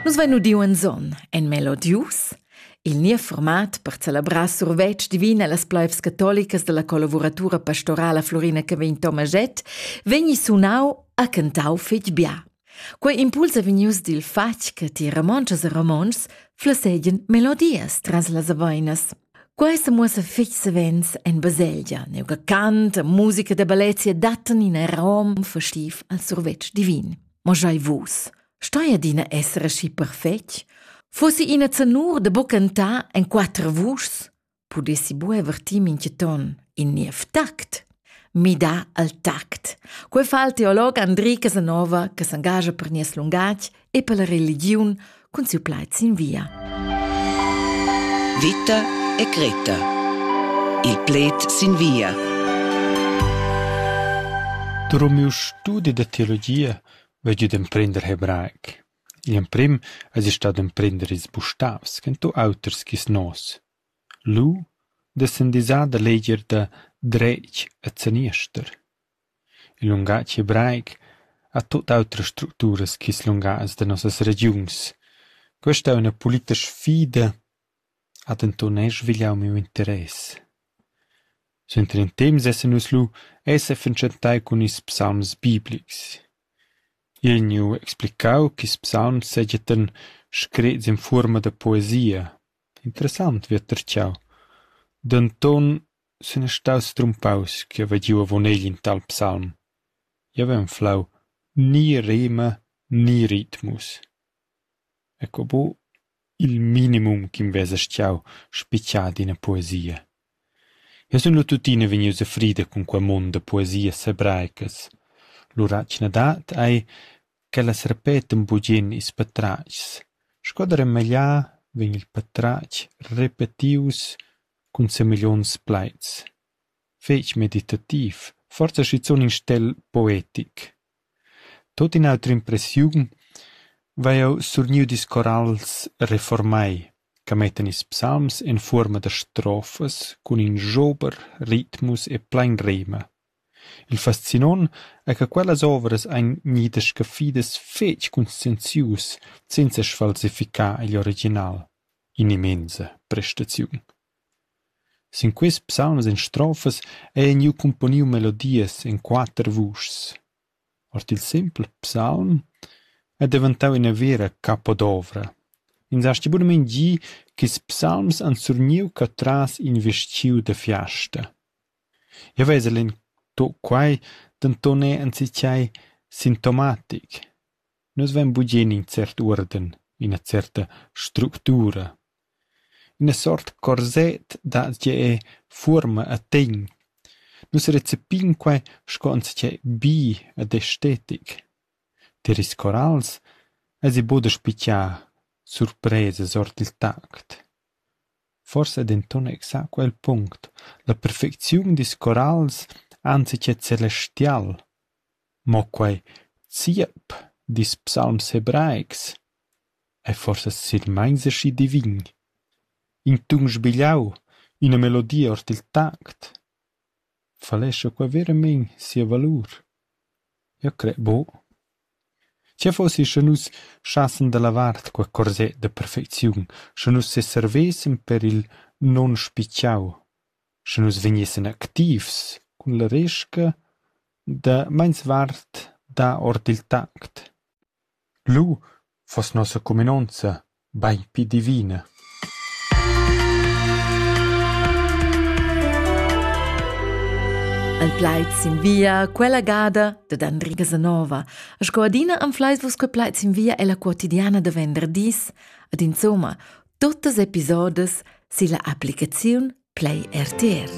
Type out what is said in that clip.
Nus vein udiu in zon, en melodius, il niev format per celebrar survetsch divin allas pleivs catolicas dalla collavuratura pastorala Florina Cavegn Tomaget, vegni sunau a cantau fetg bia. Quei impuls è vegnius dil fatg che ti romontschas e romontschs flessegian melodias tras las aveinas. Quei semuossa fetg savens en baselgia, neuca cant e musica da bellezia dattan in arom festiv al survetsch divin. Ma schei vus, stoi adina esser aschi perfetg? Fossi ina zanur da buca cantar en quater vuschs? Pudessi buca vertir mintga ton in niev tact? Midà al tact. Quei fa il teolog Andri Casanova che s'engascha per nies lungatg e per la religiun cun siu plaid sin via. Vita e Greta. Il pled sin via. Drum miu studi da teologia vegg id emprender hebraic. Il emprim es i stad emprender ils bustavs, chen tu auters chis nos. Lu dessan disar da leger da dretg e zaniester. Il lungatg hebraic ha tut autras structuras ch'ils lungatgs da nossas regiuns. Questa ei ina pulita sfida, ha denton era svigliau miu interess. Suenter in temps essan nus lu e sefatschentai cun ils psalms biblics. Igl gneu explicau ch'ils psalms seigien screts en fuorma da poesia. Interessant vieter tgau, denton sun ei staus strumpaus ch'jeu haveva giu avon egl in tal psalm. Jeu haveva enflau ni rema ni ritmus. Eco buc il minimum ch'in vesa schau spitgà d'ina poesia. Eu sun lu tuttina vegnius a frida cun quei mund da poesias hebraicas. Lura chi n'ha dat ei ch'ellas repetan bugen ils patratgs. Sco da remagliar vegn il patratg repetius cun semiglions plaids. Fetg meditativ, forsa schizun in stel poetic. Tut in auter impressiun vai jeu surgniu discorals reformai che mettan ils psalms en fuorma da strofas cun in jober, ritmus e plein rema. Il fascinont ei che quellas ovras ein gnidas scaffidas fetg conscienzius senza sfalsificar igl original. In'immensa prestaziun. Sin quist psalms en strofas ei gnü cumponiu melodias en quatter vuschs. Ord il simpel psalm è deventau ina vera capodovra. Ins hasti bunamein gi ch'ils psalms han surgniu catras in vestgiu da fiasta. Jeu vesel en quai denton er enzatgei sintomatic. Nus vein bugen in cert uorden, ina certa structura, ina sort corset da tgei fuorma e tegn. Nus recepin quei sco enzatgei bi ed estetic. Tier ils corals eisi buca da spitgar surpresas ord il tact. Forsa è denton exact quel punct: la perfecziun dils corals anzi che celestial. Mo quei ziep dils psalms hebraics ei forsa silmeins aschi divin, in tun sbigliau, ina melodia ord il tact, falescha qua veramein sia valur? Jeu cret buc. Tgei fossi sche nus schassen dalla vart quei corset da perfecziun, sche nus seservessan per il nunspitgiau? Sche nus vegnissan activs cun la resca da meinsvart dar ord il tact. Lu fuss nossa cuminonza bein pli divina. En plaids sin via quella gada dad Andri Casanova. Sco adina anfleis vus che plaids sin via è la quotidiana da venderdis. Ad insomma, Tuttas episodas silla applicaziun Play RTR.